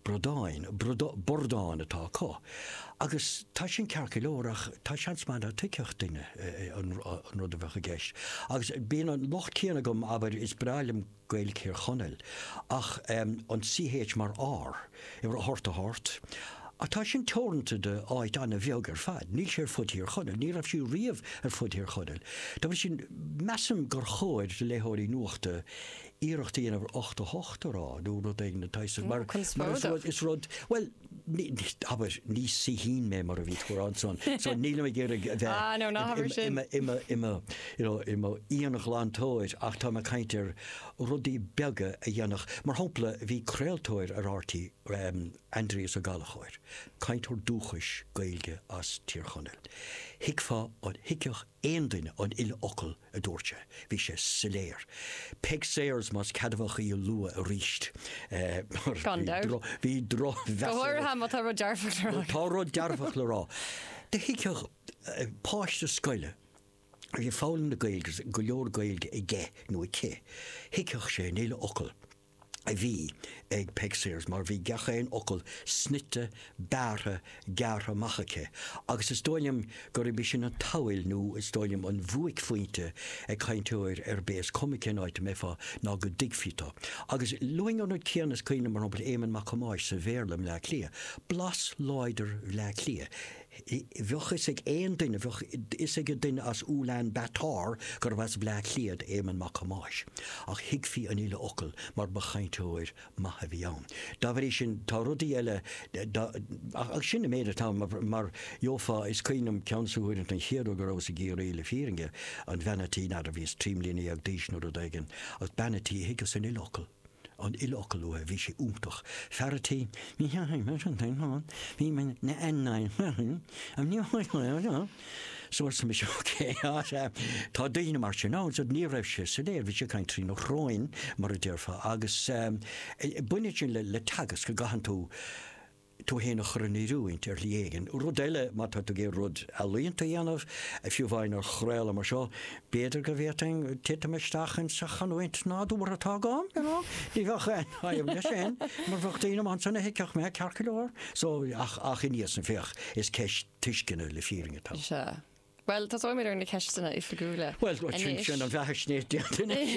Bradáin, bradán, bordán atá acu. Agus tá sin ceart go leor ach tá seans maith nach dtuigfeadh duine an rud a bheadh i gceist. Agus bíonn an locht céanna agam, abair, is breá liom Gaeilg Thír Chonaill, ach an CH mar R, i rocht a hocht, ach tá sin teoranta do áit an-bheag ar fad. Níl sé ar fud Thír Chonaill, ní raibh sí riamh ar fud Thír Chonaill. Dá bhrí sin, measaim gur chóir do léitheoirí nuachta iarracht a dhéanamh ochtó a hocht a rá nó rud éigin den tsaghas sin mar is rud, bhuel, abair, ní saoithín mé mar a bhí tú a rá ansan so nílim ag iarraidh a bheith im íonghlantóir ach táim ag caint ar rudaí beaga a dhéanfadh, mar shampla bhí craoltóir ar RTÉ, Aindrias Ó Gallchóir, cainteoir dúchais Gaeilge as Tír Chonaill, thuigfeá, thuigfeadh aon duine an uile fhocal a dúirt sé. Bhí sé soiléir. Peig Sayers, más ceadmhach í a lua aríst. Gan dabht. Bhí drochmheas. Go háirithe má tá rud dearfach le rá. Tá rud dearfach le rá. Do thuigfeadh páiste scoile a bhí ag foghlaim na Gaeilge agus go leor Gaeilge aige nó aici, thuigfeadh sé an uile fhocal. a bhí ag Peig Sayers mar bhí gach aon fhocal snoite, bearrtha, gearrtha amach aici agus is dóigh liom gurb í sin an tsamhail nó is dóigh liom an bhuaicphointe ag cainteoir ar bith is cuma cén áit a mbeifeá ná go dtuigfí thú agus luaim an rud céanna is cuimhin liom, mar shampla, Éamonn Mac Thomáis sa Bhéarla i mBleá Cliath, blas láidir Bhleá Cliath. Bheadh fhios ag aon duine, bheadh fhios ag duine as Ulaan Bator gurbh as Bleá Cliath d'Éamonn Mac Thomáis, ach thuigfí an uile fhocal mar ba chainteoir maith a bhí ann. Dá bhrí sin, tá rudaí eile, ach sin an méid atá ann, mar gheofá, is cuimhin liom ceann des na huaireanta an chéad uair go rabhas i gCiarraí, le fírinne, an bhean a' tí, n'fheadar, bhíos trí mbliana déag d'aois nó rud éigin, ach bean a' tí thuigeas an uile fhocal. an uile fhocal uaithi, bhí sé iontach fear a' tí, ní theachaigh mé sin féin ann, bhí mé na an na an an ní so arsa mise ok á sea tá daoine mar sin ann so ní raibh sé soiléir bhí sé ag caint trí na shróin mar a déarfá agus baineann sin le teagasc go gcaitheann tú tú féin a chur in oiriúint ar shlí éigin. Rud eile, má tá tú ag iarraidh rud ealaíonta a dhéanamh, fiú amháin ar chraoladh mar seo, b'fhéidir go bhféadfainn titim isteach insa chanúint nádúrtha atá agam, you know? Ní bheadh aon fhadhb leis sin, mar bheadh daoine amach ansan a thuigfeadh mé, ceart go leor. So, ach, ach anois ansan, féach, is ceist tuisceana le fírinne atá ann. Sea. Bhuel, tosóimid ar na ceisteanna oifigiúla Bhuel, anois. sin an bheathaisnéis déanta anois.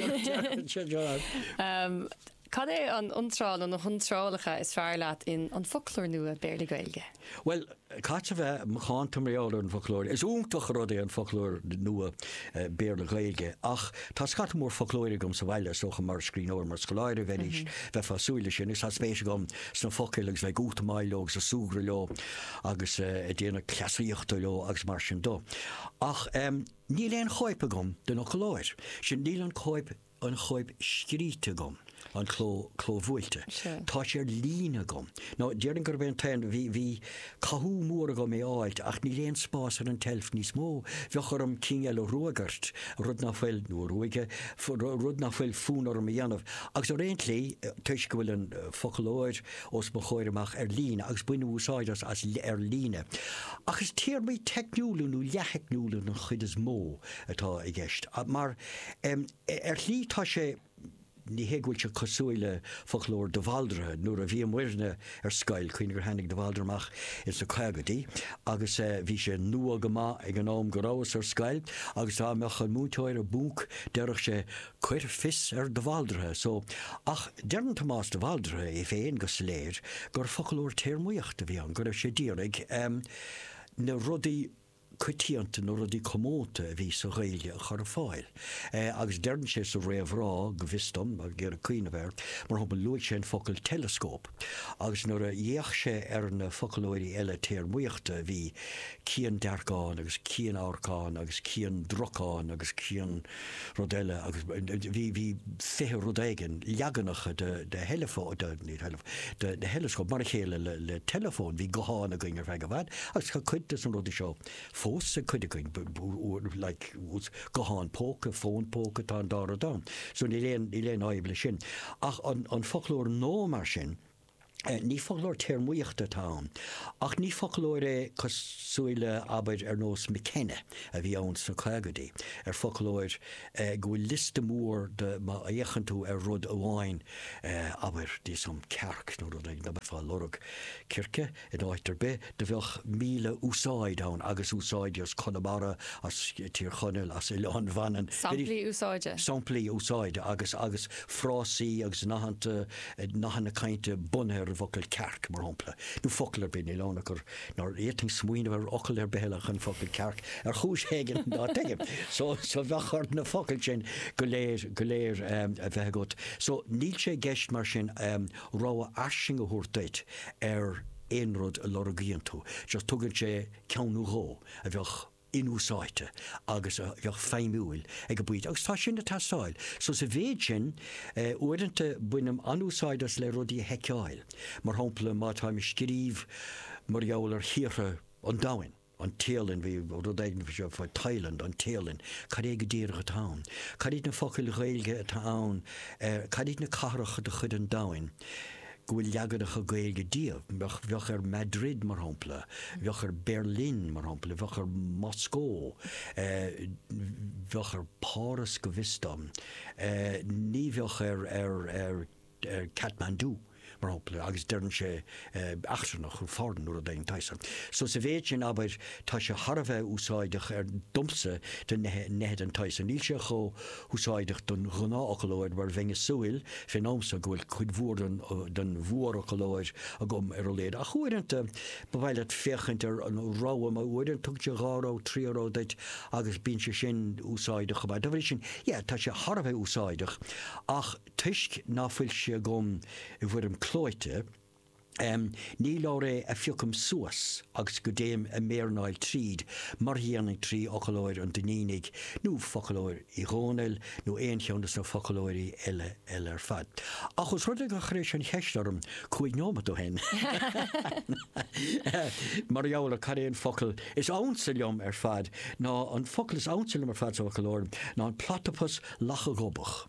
Cad é an iontráil nó na hiontrálacha is fearr leat in An Foclóir Nua, Béarla-Gaeilge? Bhuel, caithfead a bheith macánta mar gheall ar an bhfoclóir. Is iontach rud é An Foclóir Nua, Béarla-Gaeilge ach tá scata mór foclóirí agam sa bhaile, is dócha mar scríbhneoir, mar scoláire a bheidh arís, bheifeá ag súil leis sin agus tá spéis agam sna focail agus bheith ag útamáil leo agus ag súgradh leo agus ag déanamh cleasaíochta leo agus mar sin dó. Ach níl aon chóip agam den fhoclóir sin, níl an chóip, an chóip scríte agam, an cló, clóbhuailte. Tá sé ar líne agam. Nó déarfainn gurb é an t-aon, bhí, bhí cathú mór agam é a fháilt ach níl aon spás ar an tseilf níos mó, bheadh orm cinn eile a ruagairt, rud nach bhfuil, nó a ruaigeadh, rud nach bhfuil fonn orm a dhéanamh. Agus ar aon tslí, toisc go bhfuil an foclóir, os mo chomhair amach ar líne agus bainim úsáid as as ar líne, ach is téarmaí teicniúla nó leath-theicniúla den chuid is mó atá i gceist. Mar, ar shlí, tá sé. ní hé go bhfuil sé cosúil le foclóir de Bhaldraithe. Nuair a bhíomairne ar scoil, cuimhnigh gur tháinig de Bhaldraithe amach ins na caogaidí agus bhí sé nua go maith ag an am go rabhas ar scoil agus dá mbeadh an múinteoir i bponc, déarfadh sé, cuir fios ar de Bhaldraithe so, ach deireann Tomás de Bhaldraithe é féin go soiléir gur foclóir téarmaíochta a bhí ann, go raibh sé d'iarraidh na rudaí coitianta, na rudaí comónta a bhí sa Ghaeilge a chur ar fáil. Agus deireann sé sa réamhrá, go bhfios dom, ag iarraidh cuimhneamh air, mar shampla, luaigh sé an focal teileascóp, agus nuair a d'fhéach sé ar na foclóirí eile téarmaíochta a bhí, ciandearcán agus cianamharcán agus ciandracán agus cian, Rud eile, agus bhí, bhí fiche rud éigin, leaganacha de, de theileafón, de, ní theileafón, de, de theileascóp, mar a chéile le, le teileafón, bhí guthán againn ar feadh i bhfad, agus tá cuid des na rudaí seo fós ag cuid againn, b, b, uair, like, ús, guthán póca, fón póca, tá an dá rud ann. So níl aon, níl aon fhadhb leis sin. Ach an, an foclóir nua mar sin, Ní foclóir téarmaíochta atá ann, ach ní foclóir é cosúil le, abair, ar nós McKenna a bhí ann sna caogaidí, ar foclóir go bhfuil liosta mór de má fhéachann tú ar rud amháin, abair, thíos faoin cearc nó rud éigin, dá mbeifeá ag lorg circe In áit ar bith, do bheadh míle úsáid ann agus úsáidí as Conamara, as Tír Chonaill, as Oileán Mhanann. Samplaí úsáide. Samplaí úsáide agus agus frásaí agus nathanta, nathanna cainte bunaithe ar an bhfocal cearc, mar shampla. Nó focal ar bith, níl ann ach gur, nár fhéadfainn smaoineamh ar fhocal ar bith eile ach an focal cearc, ar chúis éigin ná tuigim. So, so bheadh ort na focail sin go léir, go léir a bheith agat. So, níl sé i gceist mar sin, rogha fhairsing a thabhairt duit ar aon rud a lorgaíonn tú, just tugann sé ceann nó dhó a bheadh inúsáidte agus a bheadh feidhmiúil ag an bpointe agus tá sin ag teastáil. So sa mhéid sin, uaireanta bainim an-úsáid as le rudaí a sheiceáil, mar shampla má táim ag scríobh mar gheall ar thíortha an domhain, an Téalainn, bhí rud éigin faoi seo, faoi Thailand, an Téalainn, cad é go díreach atá ann? Cad iad na focail Ghaeilge atá ann ar, cad iad na cathracha de chuid an domhain go bhfuil leaganacha Gaeilge díobh? Bheadh, bheadh ar Madrid, mar shampla, bheadh ar Berlin, mar shampla, bheadh ar Mhoscó, bheadh ar Páras go bhfios dom, ní bheadh ar, ar, ar. Kathmandu, mar shampla, agus deireann sé eachtrannach, foreign, nó rud éigin den tsaghas san. So sa mhéid sin, abair, tá sé thar a bheith úsáideach ar, domsa, do neithe den tsaghas san. Níl sé chomh húsáideach don ghnáthfhoclóir mar bheinn ag súil, fén am so, go bhfuil cuid mhór den mhórfhoclóir agam ar a laghad. Ach uaireanta, ba mhaith leat féachaint ar an rogha, mar uaireanta tugann sé dhá rogha, trí rogha duit agus bíonn sé sin úsáideach chomh maith. Dá bhrí sin, yeah, tá sé thar a bheith úsáideach ach, Toisc ná fuil sé agam i bhfoirm clóite, ní leabhar é a phiocaim suas agus go dtéim ag méarnáil tríd mar a dhéanfainn trí fhocalóir an Duinnínigh nó focalóir Uí Dhónaill nó aon cheann de sna focalóirí eile eile ar fad. Ach os rud é gur chuiris an cheist orm cúig nóimeat ó shin mar gheall ar cad é an focal is ansa liom ar fad, ná an focal is ansa liom ar fad sa bhfoclóir ná an platapas lacha-ghobach.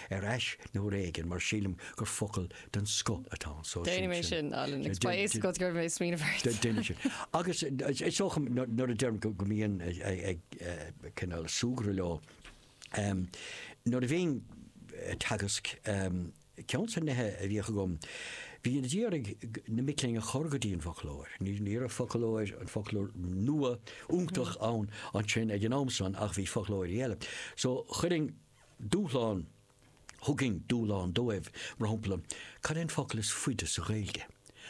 ar ais uair éigin mar sílim gur focal den scoth atá anso. Déanfaidh mé sin, Alan, agus ba é is go gcuirfidh mé a smaoineamh ort. Déanfaidh sin. Agus is dócha nuair a deirim go mbínn ag cineál súgradh leo, nuair a bhínn ag teagasc, ceann de na nithe a bhíodh agam, bhí ná díreach na mic léinn a chur go dtí an bhfoclóir. Ní raibh foclóir, an foclóir nua, iontach ann ansin ag an am san ach bhí foclóirí eile. So chuirfinn. Dúshlán, thugainn dúshlán dóibh, mar shampla, cad é an focal is faide sa Ghaeilge?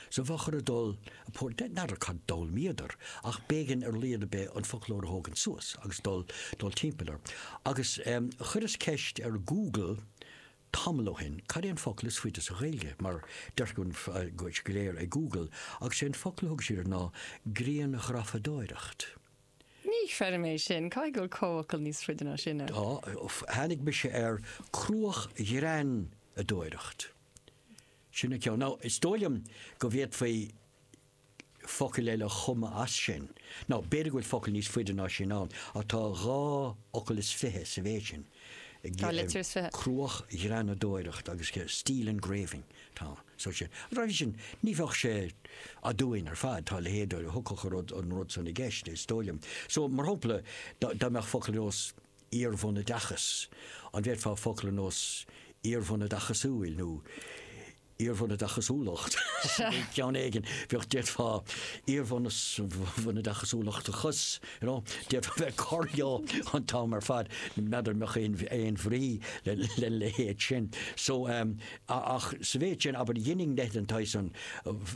So bheadh orthu dul, ag pór, n'fheadar cad a d'fhoghlaimíodar ach b'éigean ar a laghad ar bith an foclóir a thógaint suas agus dul, dul timpeall air. Agus chuireas ceist ar Ghoogle tamall ó shin, cad é an focal is faide sa Ghaeilge, mar deirfiúr go léir ag Google, agus sé an focal a thug siad air ná grianghrafadóireacht. Ní chreidim é sin. Caithfidh go bhfuil comhfhocal níos faide ná sin ann. Tá. Tháinig mise ar cruachghreanadóireacht. Sin an ceann. Nó is dóigh liom go bhféadfaí focail eile a chumadh as sin. Nó b'fhéidir go bhfuil focal níos faide ná sin ann, ach tá dhá fhocal is fiche sa mhéid sin. Dhá litir is fiche. Cruachghreanadóireacht agus steel engraving. Tá. So sin. Dá bhrí sin, ní bheadh sé aduain ar fad, tá a leithéid a thiocfadh a rud, an rud san i gceist, is dóigh liom. So, mar shampla, dá dá mbeadh focal ar nós iarbhunoideachas, an bhféadfá focal ar nós iarbhunoideachasúil nó iarbhunoideachasúlacht, ceann éigin, bheadh, d'fhéadfá iarbhunus bhunoideachasúlachtachas, you know, d'fhéadfá bheith ag cur leo an t-am ar fad, n'fheadar an mbeadh aon aon bhrí lena leithéid sin. So, Ach sa mhéid sin, abair, dheininn nithe den tsaghas san,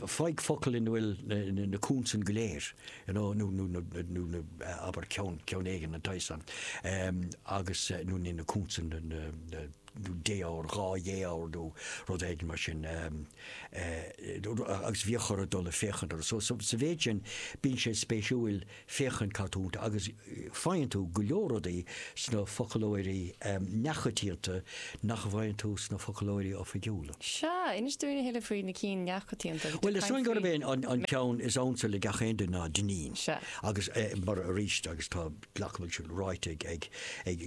faigh focal ina bhfuil na consain go léir, you know, nó na, nó na, abair, ceann, ceann éigin den tsaghas san, agus, nó níl na consain, na, na, na, nó défhoghair, dhá dhéfhoghar nó rud éigin mar sin, agus bhíodh orthu dul ag féachaint orthu. So, sa mhéid sin, bíonn sé spéisiúil. féachaint cad tá iontu agus faigheann tú go leor rudaí sna foclóirí neamhchoitianta nach bhfaigheann tú sna foclóirí oifigiúla. Sea, inis dúinn a thuilleadh faoi na cinn neamhchoitianta. Bhuel, is dóigh gurb é an ceann is ansa le gach aon duine ná Dinneen. Sea. Agus mar, arís, agus tá, glacaim go bhfuil sin ráite ag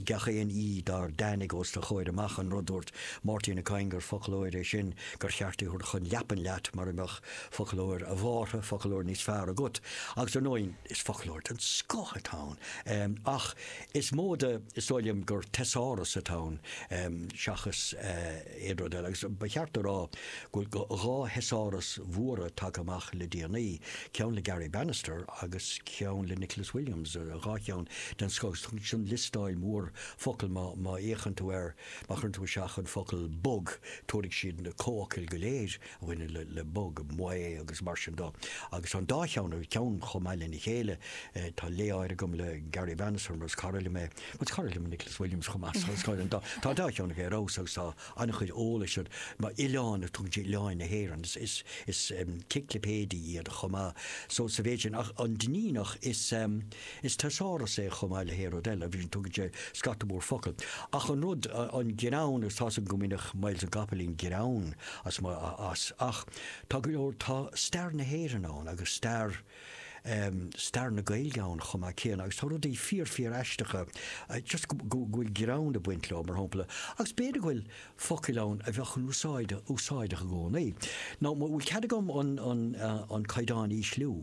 gach aon aoi dár dtáinig os do chomhair amach, an rud a dúirt Máirtín Ó Cadhain gur foclóir é sin gur cheart é a thabhairt chun leapan leat mara mbeadh Foclóir, a Mhártha, foclóir níos fearr agat, agus ar ndóigh is foclóir den scoth atá ann, ach is mó de, is dóigh liom, gur teasáras atá ann seachas aon rud eile, agus ba cheart a rá go bhfuil dhá theasáras mhóra tagtha amach le déanaí, ceann le Garry Bannister agus ceann le Nicholas Williams, dhá cheann den scoth, agus tugann liostáil mhór focal, má fhéachann tú air, má chuireann tú isteach an focal bog, tabharfaidh siad na comhfhocail go léir. bhaineann le bog, maoth agus mar sin de agus an dá cheann acu, ceann chomh maith lena chéile. Tá lé áirithe agam le Garry Bannister mar is cara liom é, mar is cara liom Nicholas Williams chomh maith so is cara liom tá an dá cheann acu ar fheabhas agus tá an-chuid eolais abair oileán tugann sé oileáin na hÉireann is ciclipéidí iad chomh maith so sa mhéid sin ach an Duinníneach is teasáras é chomh maith le haon rud eile agus tugann sé scata mór focal ach an rud an greann agus tá's agam go mbainfeadh Myles na gCopaleen greann as mo as ach tá go leor tá stair na hÉireann ann agus stair em stair na Gaeilge ann chomh maith céanna agus tá rudaí fíor fíor aisteacha a just go go bhfuil greann ag baint leo mar shampla agus b'fhéidir go bhfuil focail ann a bheadh an-úsáid úsáideach i gcónaí ná bhfuil cead agam an an an caighdeán a ísliú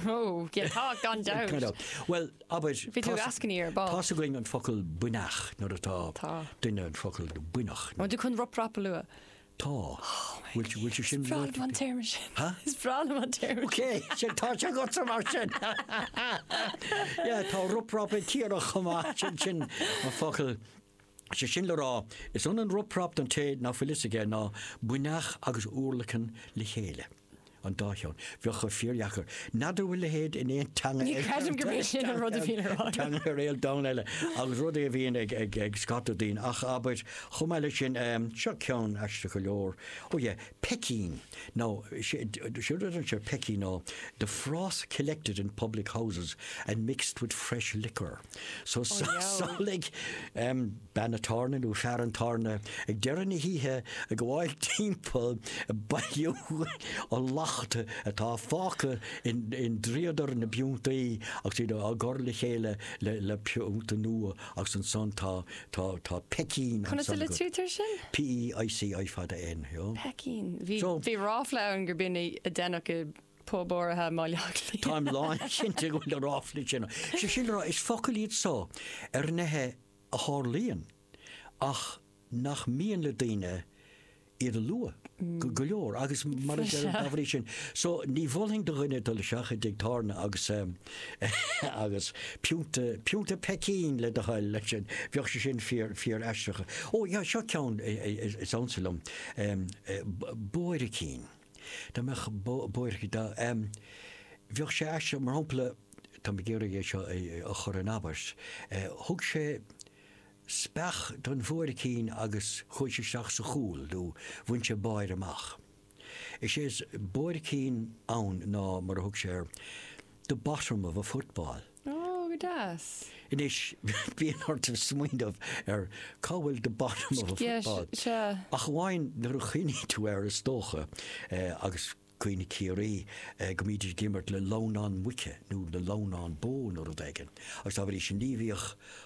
Oh, yeah, tá, gan dabht. Gan dabht. Bhuel, abair, Bhí tú ag eascainí ar ball. tá's againn an focal buinneach nuair atá Tá. duine an focal buinneach. An bhfuil tú chun rup rap a lua? Tá. Bhfuil tú, bhfuil tú sin Breá liom an téarma sin. Ha? Is breá liom an téarma Ok, sin, tá sé agatsa mar sin. Yeah, tá rup rap ag cíoradh chomh maith sin, sin an focal. Is é sin le rá, is ionann rup rap don té nach bhfuil fhios aige ná buinneach agus urlacan le chéile. an dá cheann. Bheadh sé fíordheacair. N'fheadar an bhfuil a leithéid in aon teanga ar an domhan eile agus rud é a bhíonn ag, ag, ag scata daoine ach abair chomh maith leis sin um, seo ceann aisteach go leor. Ó yeah, peicín nó siúd an seo peicín nó the froth collected in public houses and mixed with fresh liquor. So samhlaigh bean an tábhairne nó fear an tábhairne ag deireadh na hoíche ag gabháil timpeall ag bailiú an lacht atá fágtha i ndríodar na bpiúntaí agus iad á gcur le chéile le piúnta nua agus ansan tá peicín ansan go. Conas a litrítear sin? P-e-i-c-i fada N. Peicín. Bhí ráfla ann gur b'in a deineadh i pub áirithe i mBleá Cliath. Táim lánchinnte go bhfuil na ráflaí sin, sé sin le rá, is focail iad so ar nithe a tharlaíonn ach nach mian le daoine iad a lua, go leor, agus mar a deir dá bhrí sin so ní mholfainn do dhuine dul isteach i dtigh tábhairne agus agus pionta, pionta peicín le do thoil leis sin, bheadh sé sin fíor, fíor aisteach. Ó, seo ceann is ansa liom, buaircín. Dá mbeadh buairt, dá, bheadh sé aisteach, mar shampla, táim ag iarraidh é seo a chur in abairt, thug sé speach don bhuaircín agus chuaigh sé isteach sa chúl nó bhain sé báire amach. Is é is buaircín ann ná, mar a thug sé air, the bottom of a football. Ó, go deas. Anois, bíonn ort smaoineamh ar cá bhfuil the bottom of a football. Yes, sea. Ach amháin nuair a chuimhníonn tú air, is dócha, agus cuimhne Ciarraí, go mbídís ag imirt le lamhnán muice nó le lamhnán bó nó rud éigin. Agus dá bhrí sin ní bhíodh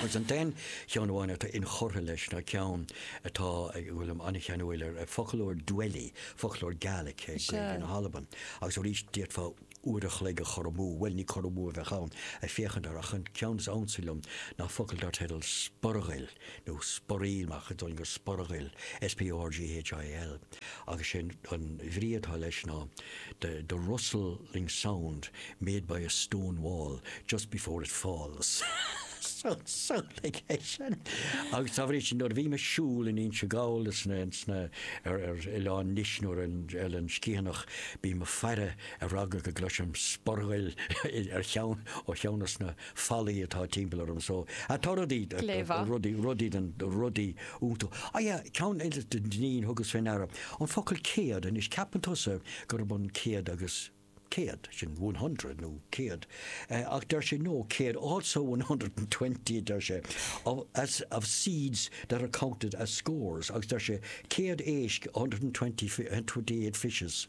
Agus an t-aon cheann amháin atá inchurtha leis ná ceann atá, go bhfuilim an-cheanúil air, foclóir Dwelly, foclóir Gaelic, Gaeilge na hAlban. Agus arís, d'fhéadfá uair a chloig a chur amú, bhuel, ní cur amú a bheadh ann, ag féachaint air, ach an ceann is ansa liom ná focal dar teideal 'Sporghail' nó 'Sporill', ach is dócha Sporghail, S-P-O-R-G-H-I-L. agus sé an bhrí atá leis ná the the rustling sound made by a stone wall just before it falls so so like é sin agus dá bhrí sin nuair a bhím ag siúl in Inse Gall is na is na ar ar oileán Nis nó ar an ar an Sciathanach bím ag faire ar eagla go gcloisfinn sporghail ar cheann ó cheann dos na fallaí atá timpeall orm so tá rudaí go léir. rudaí rudaí den rudaí iontu á yeah ceann eile den ní a thugas fé ndeara an focal céad anois ceapann tusa gurb ionann céad agus céad sin one hundred nó céad eh ach deir sé no céad also one hundred and twenty a deir sé of as of seeds that are counted as scores agus deir sé céad éisc a hundred and twenty fi- and twenty eight fishes.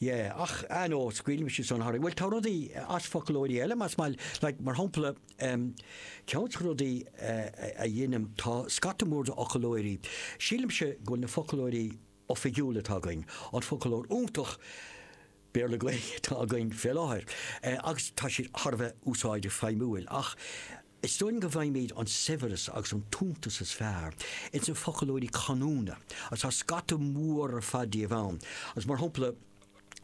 Yeah, ach I know, scaoilimse iad san thart, bhuel tá rudaí as foclóirí eile más maith leat mar shampla, um, ceann de na rudaí a dheinim, tá scata mór d'fhoclóirí, sílimse go bhfuil na foclóirí oifigiúla atá againn, an foclóir iontach Béarla-Gaeilge atá againn fé láthair, eh, agus tá siad thar a bheith úsáideach feidhmiúil, ach, Is dóigh liom go bhfaighimid an saibhreas agus an t-iontas is fearr ins na foclóirí canúna, agus tá scata mór ar fad díobh ann, agus mar shampla,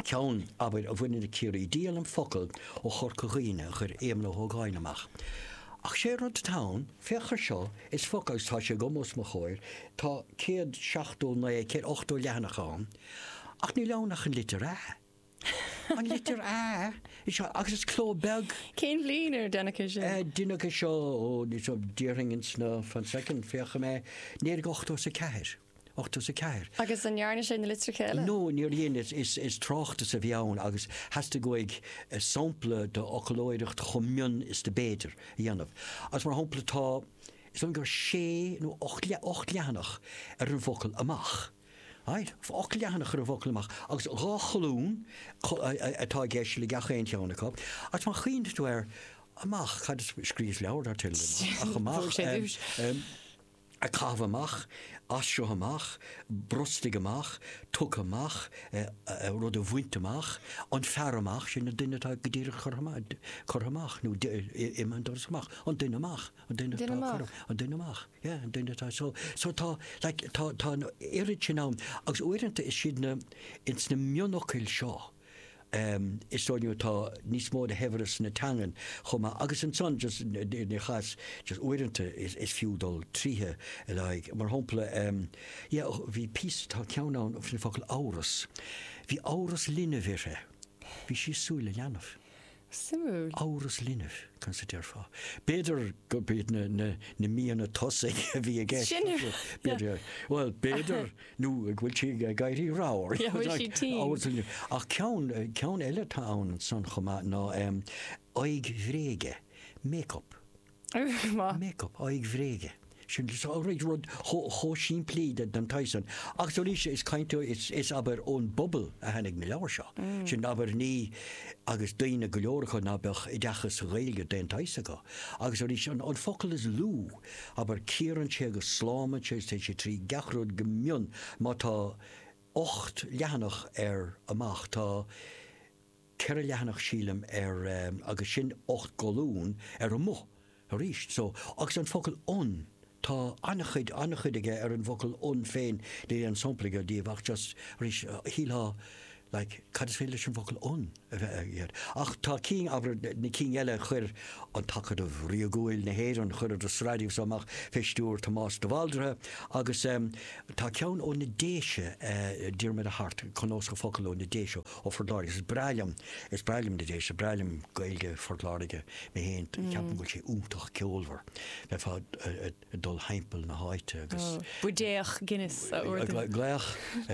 ceann, abair, a bhaineann le Ciarraí, díolaim focal ó Chorca Dhuibhne a chuir Éamonn Ó hÓgáin amach. Ach sé rud atá ann, féach air seo, is focal, agus tá sé agam os mo chomhair, tá céad seachtó naoi, céad ochtó leathanach ann, ach níl ann ach an litir 'a'. An litir A sea agus is cló beag. Cén bhliain ar déanadh é sin? Deineadh é seo ó, ní seo, déarfainn ins na, fan soicind, féachfaidh mé, naoi déag ochtó is a ceathair, ochtó is a ceathair. Agus an ndearna sé na litreacha eile? No, níor dhein, is, is, is tráchtas a bhí ann agus theastaigh uaidh sampla de fhoclóireacht chomh mion is do b'fhéidir a dhéanamh. Agus mar shampla tá, is dóigh liom gur sé nó ocht, ocht leathanach ar an bhfocal 'amach'. Ailt, ocht leathanach ar an bhfocal amach, agus dhá cholún atá i gceist le gach aon cheann acu, agus má chuimhníonn tú air amach, cad is, scríos leabhar dar teideal amach, ach amach, em, ag caitheamh amach, as seo amach, brostaigh amach, tugtha amach, eh, rud a bhaint amach, an fear amach, sin an duine atá go díreach curtha amach, curtha amach, nó, eh, imigh an doras amach, an duine amach. An duine atá a cuireadh, an duine amach, yeah, an duine atá, so, so tá, like, tá, tá an oiread sin ann agus uaireanta is iad na, ins na mionfhocail seo, ehm, is dóigh liom atá níos mó de shaibhreas na teangan chomh maith agus ansan just ina chás, just uaireanta is, is fiú dul tríd a leithéid, mar shampla, ehm, yeah, oh, bhí píosa, tá ceann ann faoin focal amhras, bhí amhras linbh uirthi, bhí sí ag súil le leanbh. Suimiúil. Amhras linbh, conas a déarfá? B'fhéidir gurb iad na na na míonna tosaigh a bhí i gceist. B'fhéidir. Bhuel, b'fhéidir nó go bhfuil sí ag éirí ramhar. Ach ceann ceann eile atá ann san chomh maith ná aghaidh bhréige, make-up. make up, aghaidh bhréige. rud chomh simplí den tsaghas san. Agus arís, is caint is abair ón bpobal a tháinig na leabhair seo. Sin abair na, agus daoine go leor acu ná beadh oideachas sa Ghaeilge d'aon tsaghas acu. Agus arís, an focal is lú, abair cíorann sé agus slámann sé agus téann sé trí gach rud go mion, má tá ocht leathanach air amach, tá, 4 leathanach sílim ar agus sin 8 gcolún ar 'amuigh' arís so agus an focal 'on' tá an-chuid aige ar an bhfocal 'on' féin níl aon sampla agam díobh ach just arís shílfeá like cad is féidir leis an bhfocal 'on' a bheith aige ach tá cinn abair na cinn eile chuir an tAcadamh Ríogúil na hÉireann chuir an tsraith mhaith so amach fé stiúir Tomás de Bhaldraithe agus tá ceann ó na Déise Diarmaid Ó hAirt cnuasach focal ó na Déise Ó Phort Láirge, Is breá liom, is breá liom na Déise, breá liom Gaeilge Phort Láirge, mé féin, ceapaim go bhfuil sé iontach ceolmhar, bheifeá ag dul timpeall na háite agus. buidéal Guinness a ordú. Glaoch,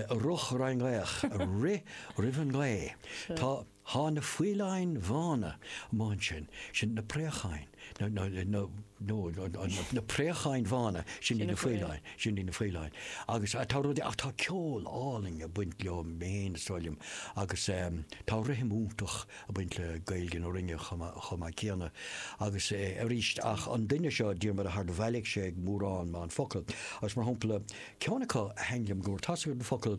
a rug ar an ngaoth, a rith roimh an ngaoth, tá, thá na faoileáin bhána amuigh ansin, sin na préacháin. na préacháin bhána, sin í na faoileáin, sin í na faoileáin. Agus tá rudaí, ach tá ceol álainn ag baint leo féin sílim agus tá rithim iontach ag baint le Gaeilge na Rinne chomh maith céanna. Agus arís, ach an duine seo, Diarmaid Ó hAirt, bhailigh sé mórán maith focal. Agus mar shampla, ceann acu a thaithin liom go mór, tá an focal,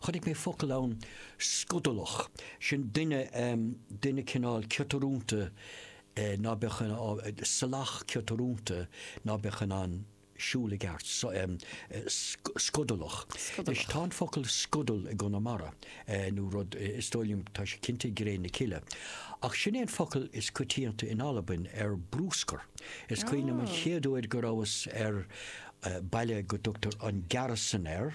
chonaic mé focal ann, scodalach, sin duine, duine cineál ciotrúnta ná beadh in ann, salach ciotrúnta ná beadh in ann siúl i gceart, scodalach. Anois tá an focal scodal i gConamara nó rud, is dóigh liom, tá sé cinnte i gCré na Cille. Ach sin é an focal is coitianta in Albain ar bruscar. Is cuimhin liom an chéad uair go rabhas ar baile go dtugtar an Gearasdan air,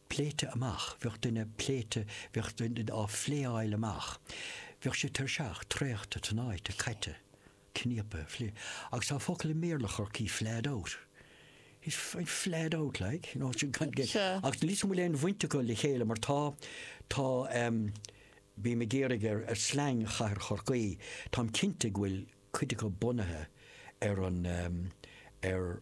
pléite amach, bheadh duine pléite, bheadh duine á phléáil amach, bheadh sé tuirseach, traochta, tnáite, caite, cníopaithe, agus tá focal i mBéarla Chorcaí flahed out, he's, he's flahed out like, you know, sin gan, gan, Sure. agus níl a fhios agam an bhfuil aon bhaint acu le chéile mar tá, tá, em, bím ag éirí ar, ar slang chathair Chorcaí, táim cinnte go bhfuil cuid acu bunaithe ar an, em, ar,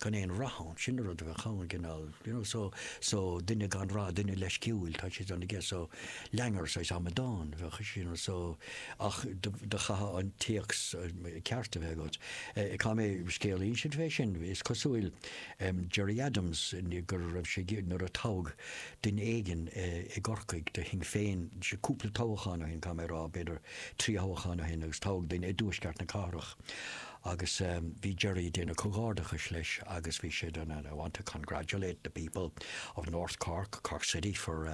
gan aon rath ann, sin an rud a bheadh ann, an cineál, you know, so, so, duine gan rath, duine leisciúil, tá siad ann aige, so, langer, saghas amadán a bheadh ansin, you know, so, ach do, do chaithfeá an comhthéacs ceart a bheith agat. Eh, tá mo scéal ansin fé sin, is cosúil, em, Gerry Adams, go raibh sé ag, nuair a toghadh duine éigin, eh, i gCorcaigh do Shinn Féin, sé, cúpla toghachán ó shin, tá mé ag rá, b'fhéidir trí thoghachán ó shin agus toghadh duine i dtuaisceart na cathrach, Agus bhí Gerry a' déanamh comhghairdeachais leis agus bhí sé den and I want to congratulate the people of North Cork, Cork City for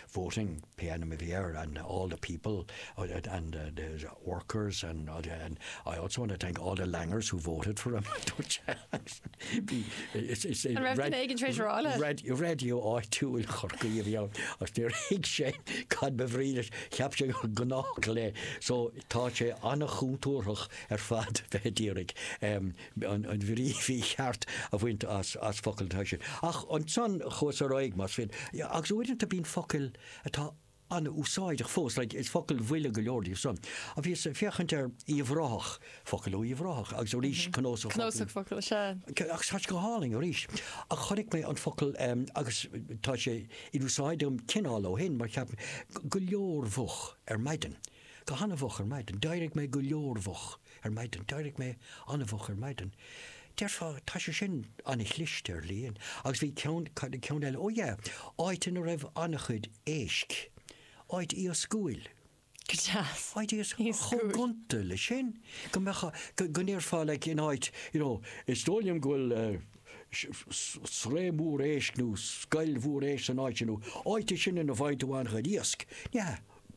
voting, pé ainm a bhí air, and all the people and the workers and and I also want to thank all the Langers who voted for him, a dúirt sé. Bhí, is, is, An raibh duine éigin tréis rá leis? radio, radio áitiúil Chorcaí a bhí ann agus níor thuig sé cad ba bhrí leis, cheap sé gur gnách le. So tá sé an-chontúrthach ar fad bheith ag iarraidh an bhrí mhícheart a bhaint as focail atá ansin. Ach ansan chuas ar aghaidh, más fíor, agus uaireanta bíonn focail atá an-úsáideach fós, like is focail bhuile go leor díobh san. Ach bhíos ag féachaint ar Uíbh Ráthach, focail ó Uíbh Ráthach, agus arís cnósach focal. Cnósach focal, sea. Agus tá sé go hálainn arís. Ach chonaic mé an focal, agus tá sé in úsáid agam cineál ó shin, mar cheap mé, go leormhoch ar maidin. Go han-mhoch ar maidin. D'éirigh mé go leormhoch ar maidin. D'éirigh mé an-mhoch ar maidin. Déarfá, tá sé sin an-chliste, dar liom. Agus bhí ceann, cad é ceann eile? Ó yeah, áit ina raibh an-chuid éisc. Áit iascúil. Go deas. Áit iascúil. Chomh gonta leis sin, go mbeadh, go ndéarfá like in áit, you know, is dóigh liom go bhfuil sraith mhór éisc nó scoil mhór éisc san áit sin nó áit é sin ina bhfaigheann tú an-chuid iasc. Yeah.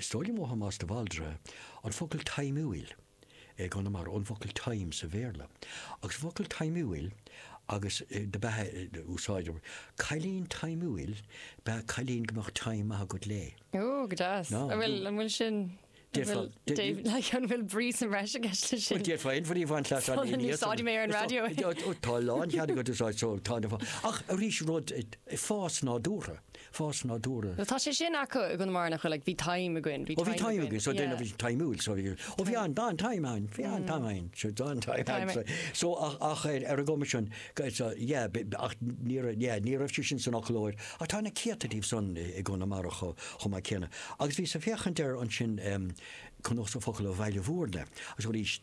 Is dóigh liom ó Thomás de Bhaldraithe an focal taimiúil i gConamara, ón bhfocal time sa Bhéarla, agus an focal taimiúil agus do bheith á úsáid, cailín taimiúil ba ea cailín go mbeadh time maith agat léi. Ó, go deas. An bhfuil, an bhfuil sin, an bhfuil, like, an bhfuil brí sa mbreis i gceist leis sin? Bhuel, d'fhéadfá aon bhrí a bhaint as an fhírinne. Úsáidfidh mé ar an raidió é. Tá lánchead agat é a úsáid, so, tá, ach arís rud, fás nádúrtha. fás nádúrtha. Tá sé sin acu i gConamara nach bhfuil ag, bhí taim againn, bhí taim againn. Ó bhí taim againn, so déanamh is taimiúil, so bhí, ó bhí an, tá an taim ann, bhí an taim againn, so tá an taim ann, so, so ach, ach ar, ar an gcuma sin, so yeah, b', b', ach ní raibh, yeah, ní raibh sé sin san fhoclóir ach tá na céadta díobh san i, i gConamara cho, chomh maith céanna. Agus bhíos ag féachaint air ansin, um, Cnósach Focal ó Bhaile Bhúirne, agus arís,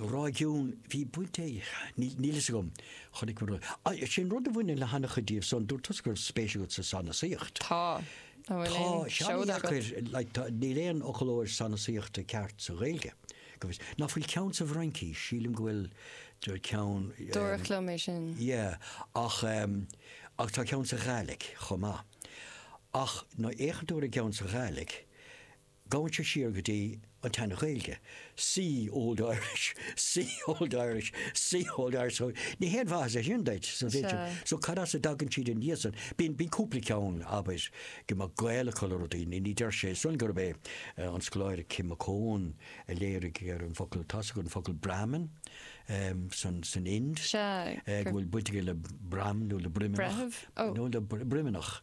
réigiún, bhí baint ag, níl a fhios agam, chonaic mé rud, sin rud a bhaineann le hana-chuid díobh so an dúirt tusa go raibh spéis agat sa sanasaíocht. Tá, an bhfuil aon seoda agat? Tá sé ana-dheacair, níl aon fhoclóir sanasaíochta ceart sa Ghaeilge, go bhfios, nach bhfuil ceann sa bhFraincís, sílim go bhfuil ceann, Dúradh liom é sin. Yeah, ach ach tá ceann sa Ghaidhlig chomh maith ach má fhéachann tú ar an gceann sa Ghaidhlig, Gabhann sé siar go dtí an tSean-Ghaeilge, see Old Irish, see Old Irish, see Old Irish, so ní haon mhaitheas é sin duit, so b'fhéidir, so cad as a dtagann siad aníos san, bíonn, bíonn cúpla ceann, abair, go mbeadh gaol acu le rudaí, ní, ní deir sé san gurb é an scoláire Kim McCone a léirigh ar an bhfocal, tá's agat an focal Brahmin, ehm, san, san Ind, eh, go bhfuil baint aige le broim nó le broimneach, nó le broimneach.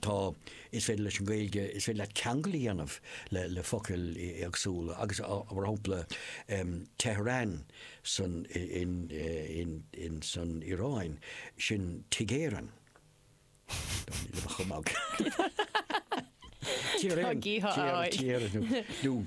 tá, is féidir leis an Ghaeilge, is féidir leat ceangal a dhéanamh le focail éagsúla agus mar shampla Tehran san, in, in, in, san Iaráin, sin Tigh Éireann. Ní raibh ach ag magadh. Tír Éireann. Tír Éireann.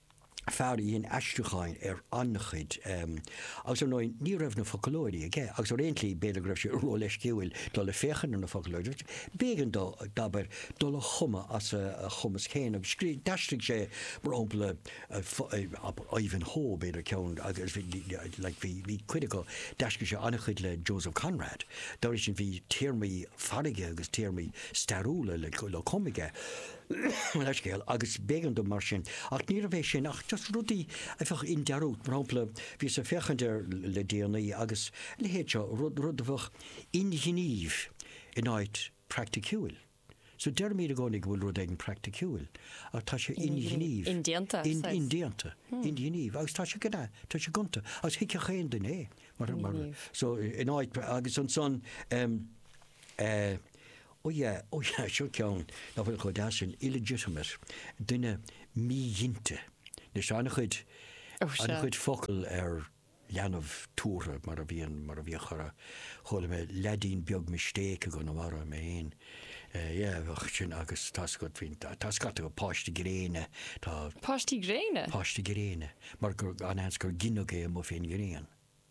fear a dhein aistriúcháin ar an-chuid, agus ar ndóigh ní raibh na foclóirí aige agus ar aon tslí b'fhéidir go raibh sé róleisciúil dul ag féachaint ar na foclóirí agus b'éigean dó, abair, dul á chumadh as a chumas féin agus scríobh, d'aistrigh sé mar shampla Ivanhoe, b'fhéidir ceann agus bhí, like, bhí, bhí cuid acu, d'aistrigh sé an-chuid le Joseph Conrad, dá bhrí sin bhí téarmaí farraige agus téarmaí stairiúla le, le, le, cumadh aige. leithscéal, agus b'éigean dó mar sin. Ach níorbh é sin ach just rudaí a bheadh i ndearúd. Mar shampla, bhíos ag féachaint air le déanaí agus a leithéid seo, rud, rud a bheadh inghnímh in áit praiticiúil. So deirimid i gcónaí go bhfuil rud éigin praiticiúil, ach tá sé inghnímh. Indéanta, in, sea. Indéanta, inghnímh, agus tá sé gna, tá sé gonta, agus thuigfeadh aon duine é. Mar, mar, so in áit agus ansan, em, eh, Ó yeah, ó yeah, seo ceann nach bhfuil chomh deas sin, illegitimate, duine míghinte. Anois, tá an-chuid, Oh, sure. an-chuid focal ar leanbh tabhartha mar a bhíonn, mar a bhíodh chuala, chuala mé leaidín beag mistake i gConamara, mé fhéin, eh, yeah, bheadh sin agus tá scata faoin, tá scata acu, páiste gréine, tá, Páistí gréine? páiste gréine, mar gur, an-seans gur gineadh é amuigh fén ngrian.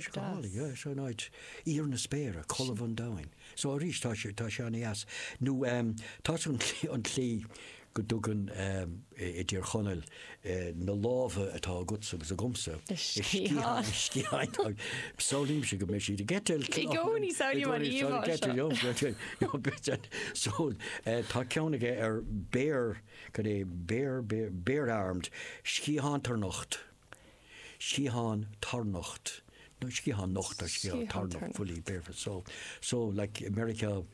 scálaí, is é an áit, íor na spéire, colbha an domhain. So arís, tá sé, tá sé an-deas. Nó tá an tslí, an tslí go dtugann siad i dTír Chonaill na lámha atá agatsa agus agamsa, sciatháin air, sciatháin, samhlaímse go mbeidís ag eitilt. I gcónaí, samhlaím an íomhá seo. So tá ceann aige ar bare, cad é, bare, bare, bare-armed, sciathántharnocht. sciathán tarnocht, nó sciathán nocht or sciathán tarnocht, fully bare, so so like i Meiriceá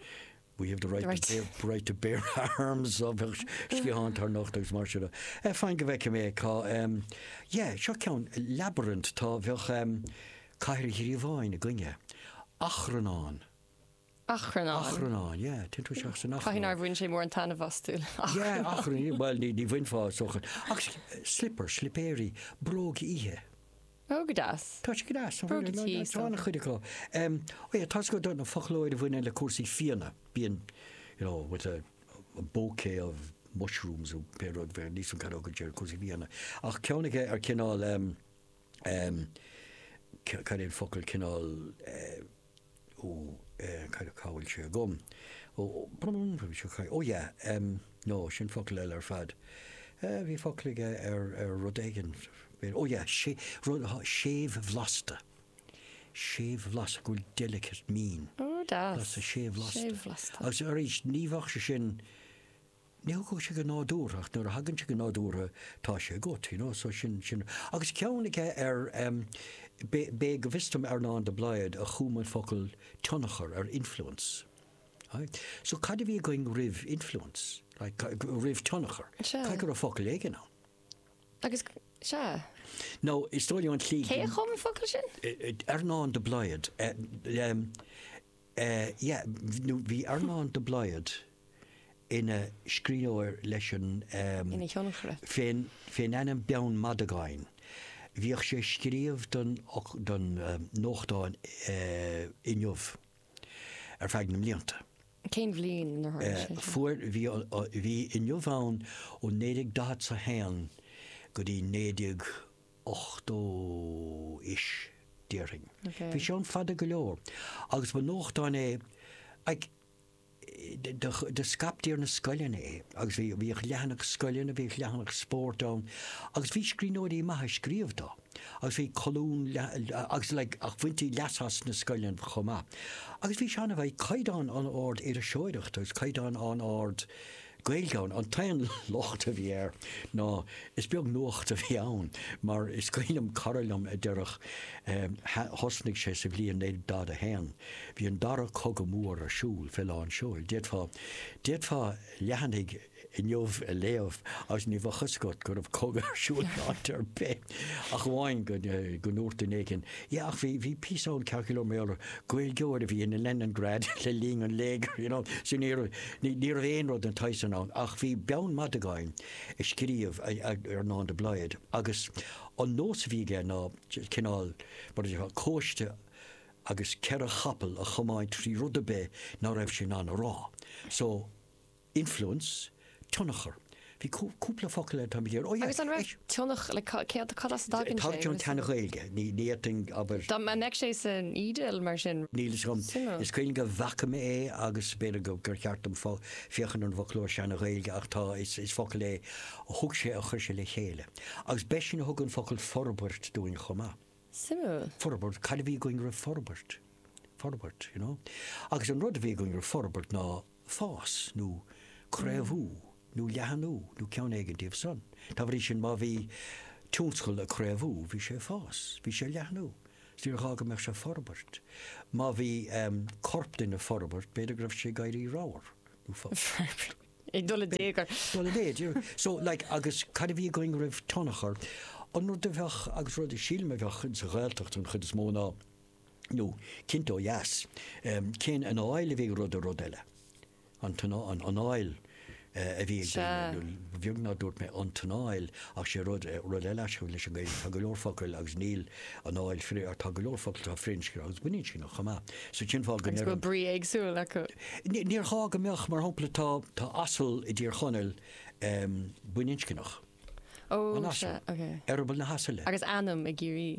we have the right to bear right to bear arms so bheadh sciathán tarnocht agus mar sin de. Eh fine go bhfeicfidh mé cá em yeah seo ceann labyrinth tá, bheadh em cathair ghríobháin ag duine, achrannán, achrannáin. yeah, téann tú isteach san achrann. Caithfidh nár bhain sé mórán taitnimh as tuilleadh achrann. Yeah, achrann, bhuel, ní, ní bhainfeá sochar. Ach slipper, slipéirí, bróg oíche. Ó, go deas. Tá sé go deas. Bróg oíche, tá an-chuid acu. Em, ó yeah, tá scata den fhoclóir a bhaineann le cúrsaí fíona, bíonn, you know, with a bouquet of mushrooms, nó pé rud, bheadh fíon á chaitheamh acu, cúrsaí fíona. Ach ceann aige ar chineál, em, Cad é an focal cineál ó cad cá bhfuil sé agam? Ó ó yeah no sin focal eile ar fad. Bhí focal aige ar ar rud éigin ó yeah sé rud séimhbhlasta. Séimhbhlasta go bhfuil delicate meaning. Ó deas. Blasta séimhbhlasta. Séimhbhlasta. Agus arís ní bheadh sé sin Ní thiocfadh sé go nádúrtha ach nuair a thagann sé go nádúrtha tá sé agat, you know, so sin sin. Agus ceann aige ar em b'é, go bhfios dom, Earnán de Blaghd a chum an focal tionchar ar influence. Right? So cad a bhí againn roimh influence? Like, roimh tionchar? Caithfidh go raibh focal éigin ann? Anáil? No, is dócha anáil. Cé a chum an focal sin? Earnán de Blaghd. Um, Eh yeah, nó bhí Earnán de Blaghd ina scríbhneoir leis an em Ina thionchaire. fén, fén ainm Beann Mhadagáin. Bhíodh sé ag scríobh don don em nuachtán eh Inniu ar feadh na mblianta. Cén bhliain inar tharla eh sé sin? fuair bhí bhí Inniu ann ó naoi déag daichead 's a haon go dtí naoi déag 80 ish, déarfainn. Bhí sé ann fada go leor, agus ba nuachtán é, like, do scaiptí ar na scoileanna é, agus bhí, bhíodh leathanach scoileanna, bhíodh leathanach spóirt ann, agus bhí scríbhneoirí maithe ag scríobh dó, agus bhí colún, agus like, ach bhaintí leas as na scoileanna chomh maith. Agus bhí sé an-, bhí caighdeán an-ard iriseoireachta, agus caighdeán an-ard, Gaeilge ann. An t-aon locht a bhí air ná is beag nuacht a bhí ann mar, is cuimhin liom cara liom a déarfadh, thosnaigh sé sa bhliain 1941, bhí an dara cogadh mór ar siúl fé lán seoil. D'fhéadfá, d'fhéadfá leathanaigh Inniu a léamh agus ní bheadh fhios agat go raibh cogadh ar siúl in áit ar bith. Ach amháin go ndúirt duine éigin, Yeah, ach bhí, bhí píosa ann ceart go leor mar gheall ar Ghaeilgeoir a bhí in Leningrad le linn an léigir, you know, so ní raibh, ní, ní raibh aon rud den tsaghas san ann. Ach bhí Beann Madagáin ag scríobh a, a, Earnán de Blaghd agus an nós a bhí aige ná cineál, mar a déarfá, cóiste agus ceithre chapall a chomáint trí rud ar bith ná raibh sé in ann a rá. So. Influence, tionchar. Bhí cúpla focal eile, táimid ar. Agus an raibh tionchar, like cad, cad as a dtagann sé? Tagann ón tSean-Ghaeilge, ní fhéadfainn, abair. Dá mbeadh sé san eDIL, mar sin. Níl fhios agam. Suimiúil. Is cuimhin liom go bhfaca mé é agus b'fhéidir gur cheart dom féachaint ar an bhfoclóir Sean-Ghaeilge ach tá, is focal é a thug sé, a chuir sé le chéile. Agus b'eisean a thug an focal forbairt dúinn chomh maith. Suimiúil. Forbairt, cad a bhí againn roimh forbairt? Forbairt, you know. Agus an rud a bhí againn roimh forbairt ná. fás nó craobhú nó leathnú nó ceann éigin díobh san. Dá bhrí sin, má bhí tionscal ag craobhú, bhí sé ag fás, bhí sé ag leathnú, is níor ghá go mbeadh sé ag forbairt. Má bhí corp duine ag forbairt, b'fhéidir go raibh sé ag éirí ramhar nó forbairt. ag dul i dtigh ar. dul i méid. So, like, agus cad a bhí againn roimh tionchar? An rud a bheadh, agus rud a sílim a bheadh sa Ghaeltacht an chuid is mó ná, nó cinnte ó dheas, cén anáil a bhí ag rud ar rud eile, an anáil a bhí ag daoine, nó ba bheag nár dúirt mé an t-anáil ach sé rud, rud eile as leis an Ghaeilge, tá go leor focail agus níl anáil, tá go leor focail atá firinscneach agus baininscneach chomh maith, so cén fáth go ndeir an. Agus go bhfuil brí éagsúil acu. Níor ghá go mbeadh, mar shampla tá, tá asal i dTír Chonaill baininscneach. Ó, sea, ok. Eireaball na hasaile. Agus ainm i gCiarraí.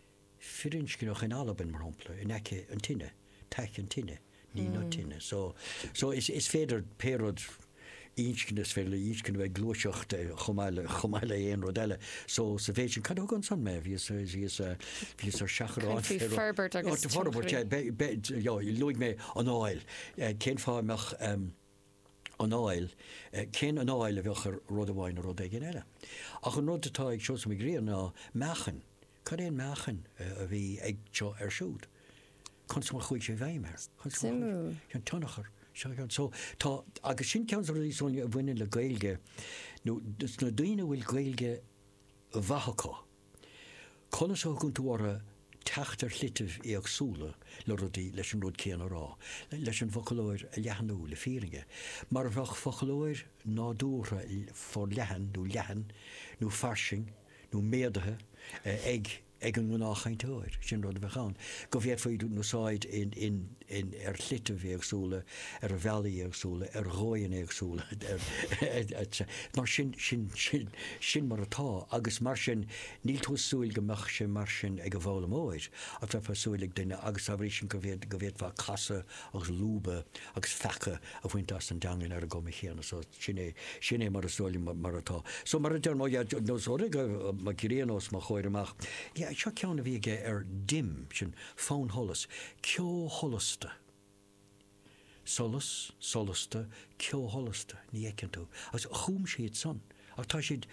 firinscneach in Albain, mar shampla, in aice an tine, taic an tine, ní na tine. So, so is, is féidir pé rud inscne, is féidir le inscne bheith gluaiseacht chomh maith le, chomh maith le aon rud eile. So, sa mhéid sin, cad a thug ansan mé? Bhíos, bhíos, bhíos ar seachrán. Caithfidh áit tú forbairt agus tionchar. Forbairt, eh, be, be, yeah, luaigh mé anáil. Eh, cén fáth a mbeadh, ehm. anáil, cén anáil a bheadh ar rud amháin nó rud éigin eile. Ach an rud atá ag Seosamh Mac Grianna ná meáchain. Cad é an meáchain a bhí ag seo air siúd? Conas mar a chuaigh sé i bhfeidhm air? An tionchar. Agus sin ceann de na rudaí a bhaineann le Gaeilge dos na daoine a bhfuil Gaeilge mhaith acu. Conas a thugann tú orthu teacht ar shlitibh éagsúla le rudaí, leis an rud céanna a rá, leis an bhfoclóir a leathnú, le fírinne, mar a bheadh foclóir nádúrtha forleathan nó leathan nó fairsing nó méadaithe ag ag an ngnáthchainteoir, sin rud a bheadh ann, go bhféadfaí úsáid in. in, ar shlitibh éagsúla, ar bhealaí éagsúla, ar dhóigheanna éagsúla, etc. Mar sin, sin, sin, sin mar atá agus mar sin níl tú ag súil go mbeadh sé mar sin ag an bhfoghlaimeoir ach bheifeá ag súil leis ag duine agus tábhacht sin go, go bhféadfá casadh agus lúbadh agus feacadh a bhaint as an dteangain ar an gcuma chéanna. So, sin é, sin é mar is dóigh liom mar atá. So, mar a deir mo Dhad, nós, ordaigh mo ghrian os mo chomhair amach. Yeah, seo ceann a bhí aige ar dim, sin. Fannsholas, ceo sholasta. Solas, solasta, ceo sholasta, ní fheiceann tú. Agus chum siad san. Ach tá siad,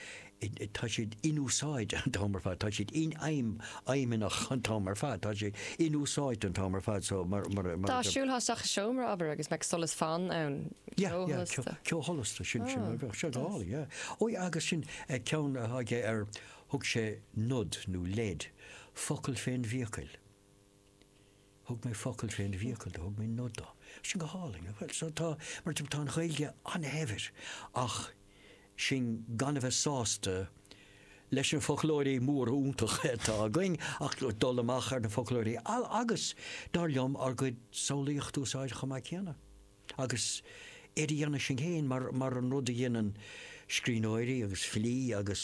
tá siad inúsáidte an t-am ar fad, tá siad infheidhm, fheidhmeannach an t-am ar fad, tá siad inúsáidte an t-am ar fad so mar, mar, mar, Dá siúlthá isteach i seomra, abair, agus go mbeadh solas fann ann, Yeah, ceo yeah, sholasta. ceo sholasta, sin, sin, bheadh sé go hálainn, yeah. Ó yeah, agus sin ceann atá aige ar Thug sé nod nó leid, focal fén bhfiacail. Thug mé focal fén bhfiacail do, thug mé nod do. Sin go hálainn, nach bhfuil? So tá, mar tá an Ghaeilge an-shaibhir ach sinn gan a bheith sásta leis na foclóirí móra iontacha atá againn ach dul amach ar na foclóirí agus, dar liom, ár gcuid samhlaíocht a úsáid chomh maith céanna. agus á dhéanamh sin féin mar an rud a dhéanann scríbhneoirí agus filí agus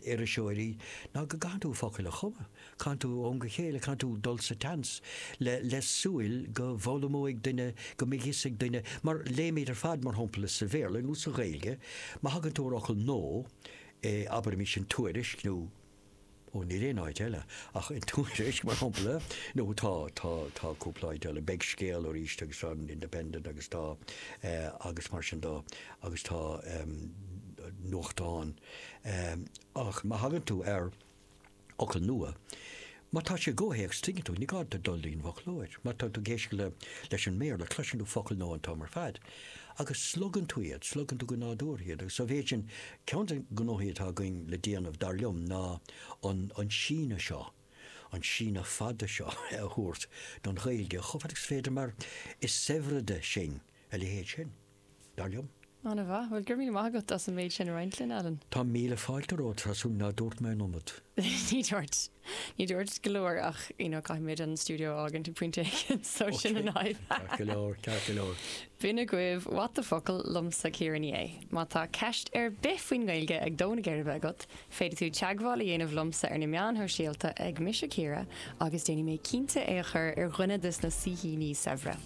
iriseoirí ná go gcaitheann tú focail a chumadh, caitheann tú ó am go chéile, caitheann tú dul sa tseans le súil go bhfoghlaimeoidh duine, go mbeidh fhios ag duine, mar léimid ar fad mar shampla sa Bhéarla nó sa Ghaeilge má thagann tú ar fhocal nua abair anois i dTuairisc nó. Ó, níl aon áit eile ach i dTuairisc, mar shampla, nó tá, tá, tá cúpla áit eile, beidh Scéal arís agus tá an Independent agus tá, agus mar sin de, agus tá nuachtáin, ach má thagann tú ar fhocal nua, má tá sé i gcomhthéacs, tuigeann tú, ní gá duit dul dtí'n bhfoclóir, má tá tú ag éisteacht le, leis an mBéarla, cloiseann tú focal nua an t-am ar fad. Agus slogann tú iad, slogann tú go nádúrtha iad agus sa mhéid sin, ceann de na gnóthaí atá againn le déanamh, dar liom, ná an síneadh seo, an síneadh fada seo a thabhairt don Ghaeilge chomh fada agus is féidir mar is saibhrede sinn a leithéid sin, dar liom. An-mhaith. Bhuel, go raibh míle maith agat as an méid sin a roinnt linn, Alan. Tá míle fáilte romhat, Tá súil nach ndúirt mé an iomad? Ní dúirt. Ní dúirt go leor ach you know caithfimid an stiúideo a fhágaint ag pointe éigin so sin an fhadhb. Ok, ceart go leor, ceart go leor. B'in agaibh what the focal liomsa Ciara Ní É. Má tá ceist ar bith faoin nGaeilge ag dó na geirbe agat, féadfaidh tú teagmháil a dhéanamh liomsa ar na meáin shóisialta ag mise Ciara agus déanfaidh mé cinnte é a chur ar dhuine de sna saoithíní saibhre.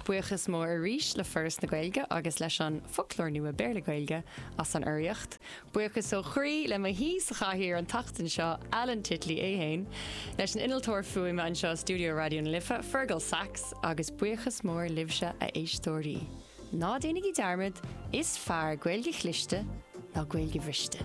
Buíochas mór arís le Foras na Gaeilge agus leis an Foclóir Nua Béarla-Gaeilge as an urraíocht. Buíochas ó chroí le mo shaoi sa chathaoir an tseachtain seo, Alan Titley é féin, leis an innealtóir fuaime anseo i stiúideo Raidió na Life, Fergal Sachs, agus buíochas mór libhse a éisteoirí. Ná déanaigí dearmad, is fearr Gaeilge chliste ná Gaeilge bhriste!